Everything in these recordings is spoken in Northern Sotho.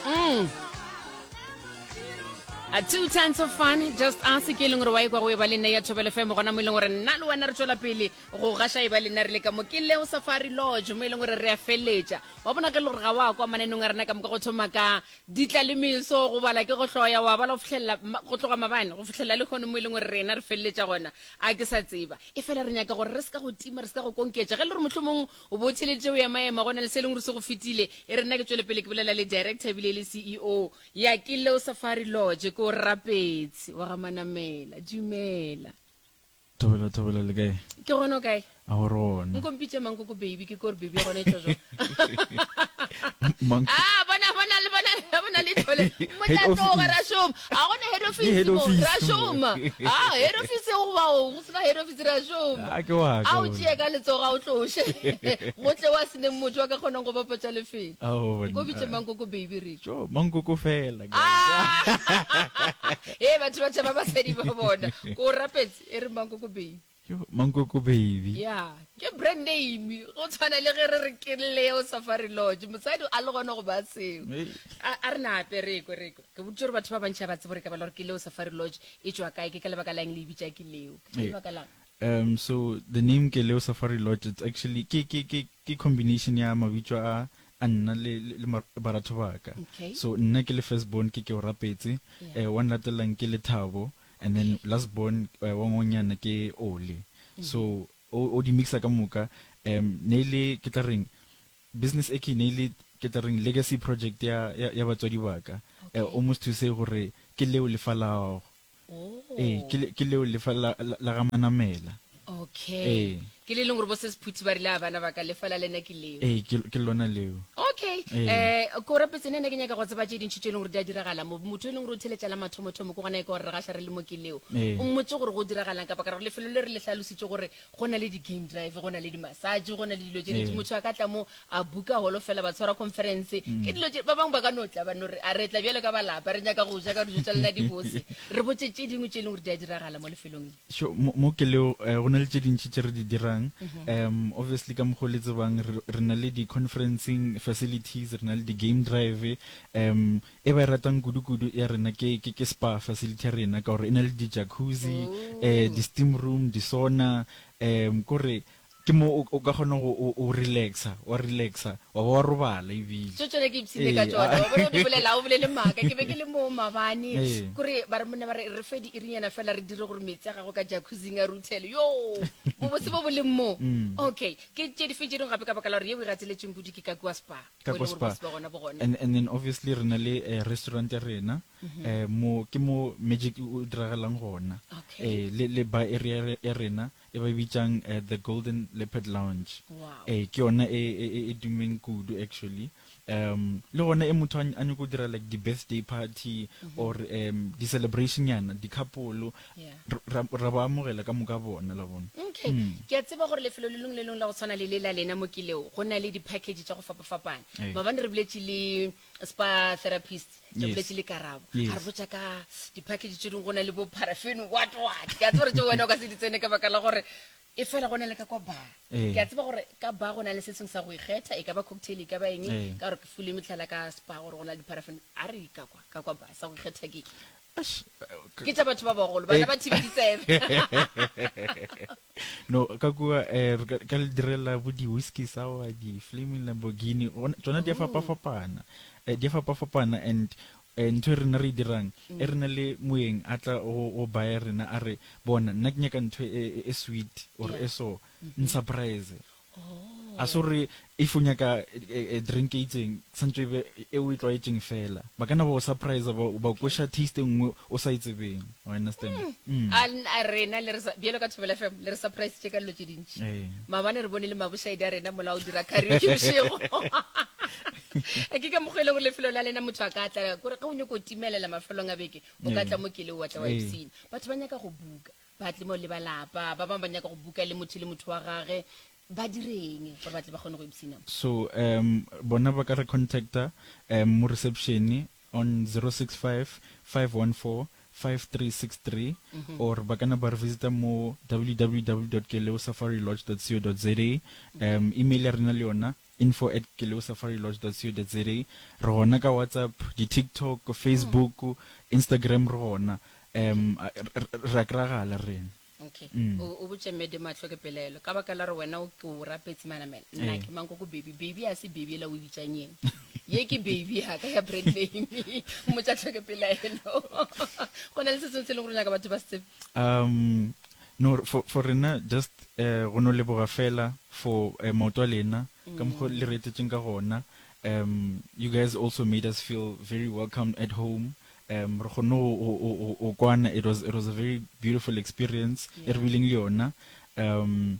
Mm. A two tons of fun just us ke e leng gore wa ekwa go e ba le nna ya thobele fm gona mo e leng gore nna le wena re tswela pele go gasha e ba le nna re le ka mo ke leo safari lodge mo e leng gore re a feletša wa bona ge le gore ga wa kwa mananong a rena ka moka go thoma ka ditla le meso go bala ke go hloya wa bala go fitlhelela ma- go tloga mabane go fitlhelela le kgone mo e leng gore rena re feletša gona a ke sa tseba e fela re nyaka gore re se ka go tima re se ka go konketša ge le gore mohlomong O bo o theeleditše go emaema go na le se e leng ruri se go fetile. E re nna ke tšwele pele ke bolela le Director e bile e le CEO ya Kileo Safari Lodge. Ke o rapetse, wa ga Manamela. Dumela. Thobela, Thobela, le kae? Ke gona, o kae? A go re gona. Nko mpitše mang koko baby, ke kore baby ya gona e tšwa jwang? A, bona, bona, le bona, bona le tlhole. Motlatloga, ra šoma. A gona head office mo, ra šoma. A, head office go ba go. seba hero fitsira šoma a ke wa ka a o tšee ka letsogo a o tloše gotle wa se neng motho wa ka kgonang go bapatša lefelo a o bona ko bitše mankoko baby re jo mankoko fela ga e batho ba tšhaba ba sedi ba bona ko rapetse e re mankoko baby jo mankoko baby ya ke brand name go tshwana le ge re re ke leo safari lodge motsadi a le gona go ba seo a re na ape re ko re ko Ke boditše gore batho ba bantši ga ba tsebe gore ka bala gore ke leo Safari Lodge e tšwa kae, ke ka lebaka la eng le e bitša ke leo. Ke lebaka la. Um, so the name ke leo Safari Lodge it's actually ke ke ke ke combination ya mabitso a a nna le le baratho ba ka. Okay. So nna ke le first born ke ke o rapetse, Yeah. eh, wa nlatelang ke le Thabo and then last born eh, wa ngonyana ke Ole. So o o di mixa ka moka um ne e le ke tla reng Business e ke ne ile ke tla reng legacy project ya ya batswadi ba ka almost to say gore ke leo lefa la go ee ke leo lefa la la ga manamela okay ee ke le leng gore bo se sephuthi ba rile a bana ba ka lefa la lena ke leo ee ke lona leo okay eh ko re petse nene ke nyaka go tseba tše dintšhi tše e leng gore di a diragala mo motho e leng gore o theletša la mathomo thomo go gona e ka gore re ga sha re le mo ke leo o mmotse gore go diragalang ka ba ka re lefelo le re le hlalositse gore go na le di-game drive go na le di-massage go na le dilo tše dintši motho a ka tla mo a buka holo fela ba tshwara conference ke dilo tše ba bangwe ba ka no tla ba no re a re tla bjalo ka balapa re nyaka go ja ka dijo tša lena di bose re botse tše dingwe tše e leng gore di a diragala mo lefelong le Sure, mo mo ke leo eh, go na le tše dintši tše re di dirang um obviously ka mokgwa o le tsebang re re na le di-conferencing facilities re na le di-game drive um E ba e ratang kudu kudu ya rena ke ke ke spa facility ya rena ka gore e na le di jacuzzi, eh di steam room, di sauna, um kore ke mo o ka kgona go o o relaxa wa relaxa wa ba wa robala ebile. Tso tsone ke ipsine ka tsona wa bona o di bolela ha o bolele maaka ke be ke le moo mabane kore ba re monna ba re re fe di irinyana fela re dire gore metsi a gago ka jacuzzing a ruthele yoo bobotse bo bo leng moo okay ke tše di fe tše dingwe gape ka baka la gore ye o e gateletsweng kudu ke ka kua spa. ka Mo e leng gore ba Kospa se ba gona bo gone. and, and then obviously re na le eh, restaurant ya rena eh, mo ke mo magic o o diragalang gona Okay. eh, le, le bar area re- ya rena e ba e bitsang eh, the golden leopard lounge Wow. eh, ke yona e, e, e, e dumeng kudu actually um le gona e motho a ny- a nyako dira like di-birthday party or um di-celebration yana di-couple ra ba amogela ka moka bona la bona okay mm. ke a tseba gore lefelo le lengwe le lengwe la go tshwana le le la lena mo kileo go na le di-package tsa go fapafapana hey. mabane re boletse le spa therapist re boletse le karabo yes. re botsa ka di-package tse dingwe go na le bo paraffin what what ke a tseba gore tse wena o ka se di tsene ka baka la gore e fela go na le ka kwa bar ee. ke a tseba gore ka bar go na le se sengwe sa go ikgetha e ka ba cocktail e ka ba eng ee. ka gore ke fule metlhala ka spa gore go na le di-paraffin a re ka kwa ka kwa bar sa go ikgetha ke ke tša batho ba bagolo bana eh. ba thibedi tsebe no ka kua um ka le direla bo di-whisky sour di-flaming lamborghini tsona di a fapafapana um eh, di a fapafapana and um ntho e rena re e dirang e re na le moeng a tla go baya rena a re bona nna ke nyaka ntho e, e, e sweet or e so mm-hmm. nsurprise a se gore if o nyaka eh, eh, drink e itseng santse ebe e o e tlwaetseng fela ba kana ba o surprise ba ba kwesha taste e nngwe o sa itsebeng e wa understand Mm. a n- a rena le re sa- bjalo ka thobela fm le re surprise tše ka dilo tše dintši Eh. maabane re bone le mabošaedi a rena mola o dira karaoke bošego a ke ka mokgwa e le gore lefelo la lena motho a ka tla kore ge o nyako timelela mafelong a beke o ka Eh. tla mo kele o watla wa Eh. ipsene batho ba nyaka go buka Batlimo le ba lapa ba bangwe ba nyaka go buka le motho le motho wa gage. Ba direng gore ba tle ba kgone go ipsina? So um bona ba ka re contacta um mo reception on 0655145363 or ba ka na ba re visita mo www dot keleosafarilodge dot co dot za um email ya rena le yona info at keleosafarilodge.co.za Re gona ka WhatsApp, di-TikTok, Facebook, Instagram re gona. Um, re a kry-agala rena. Okay. Mm. O, o botše mme Dimatlho ke pelaelo. Ka baka la re wena o ke o rapetse manamela. Nna Ee. ke mang ko ko baby. Baby a se baby ela o e bitšang yeng. Ye ke baby ya ka ya brand name. Motšatlho ke pelaelo. Go na le se sengwe se e leng gore o nyaka batho ba se tsebe? Um, No for for rena just eh go no leboga fela for eh maoto a lena ka mokgo le re etsetšeng ka gona um you guys also made us feel very welcomed at home um re kgonne go go go go go kwana it was it was a very beautiful experience e re bileng le yona um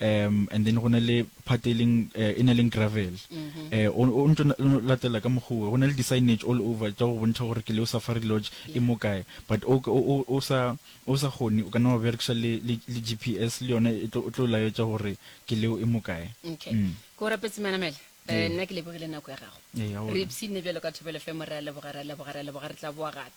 um and then go na le part e leng eh, e na leng gravel eh, o o ntse o latela ka mogoe go na le di-signage all over tša go bontšha gore ke leo safari lodge e mo kae but o o- o- o sa o sa kgone o ka nna wa berekiša le le- le g p s le yone e tlo o tlo laetša gore ke leo e mo kae okay Mm. ke o rapetse manamela um nna ke lebogile nako ya gago Ee, aowa. re ipshinne bjalo ka thobelo fe mo re a leboga re a leboga re a leboga re tla boa gape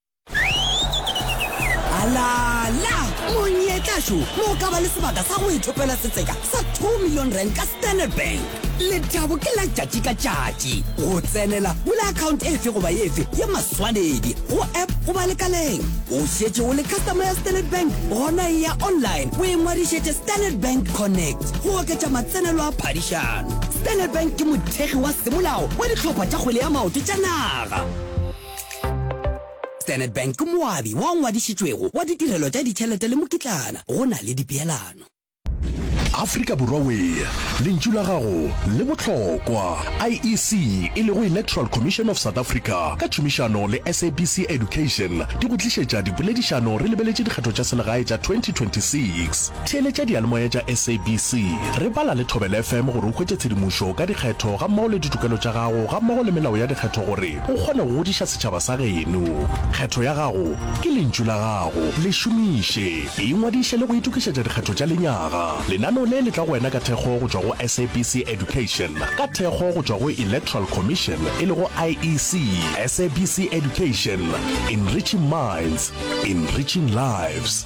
alala monyetlašo mo ka ba le sebaka sa go ithopela setseka sa 2 million rand ka standard bank letabo ke la tšatši ka tšatši go tsenela bula account efe goba efe ya maswanedi go app goba lekaleng o šetše o le customer ya standard bank gona e ya online o e ngwadišetše standard bank connect go oketša matsenelo a phadišano standard bank ke mothekgi wa semolao wa dihlopha tša kgwele ya maoto tša naga Standard Bank ke moabi wa ngwadišitšwego wa ditirelo tša ditšhelete le mokitlana go na le dipeelano. Afrika Borwa Wee, lentšu la gago le bohlokwa. IEC, e lego Electoral Commission of South Africa, ka tšhomišano le SABC Education di go tlišetša dipoledišano re lebeletše dikgetho tša selegae tša 2026. Theeletša diyalemoya tša SABC, re bala le Thobela FM gore o hwetše tshedimošo ka dikgetho gammogo le ditokelo tša gago gammogo le melao ya dikgetho gore O kgona go ngodiša setšhaba sa geno. Kgetho ya gago ke lentšu la gago. Le šomiše. Ingwadiše le go itokišetša dikgetho tša lenyaga. Lenaneo le le tla go wena ka thekgo go tšwa go SABC Education, ka thekgo go tšwa go Electoral Commission e lego IEC. SABC Education, Enriching Minds, Enriching Lives.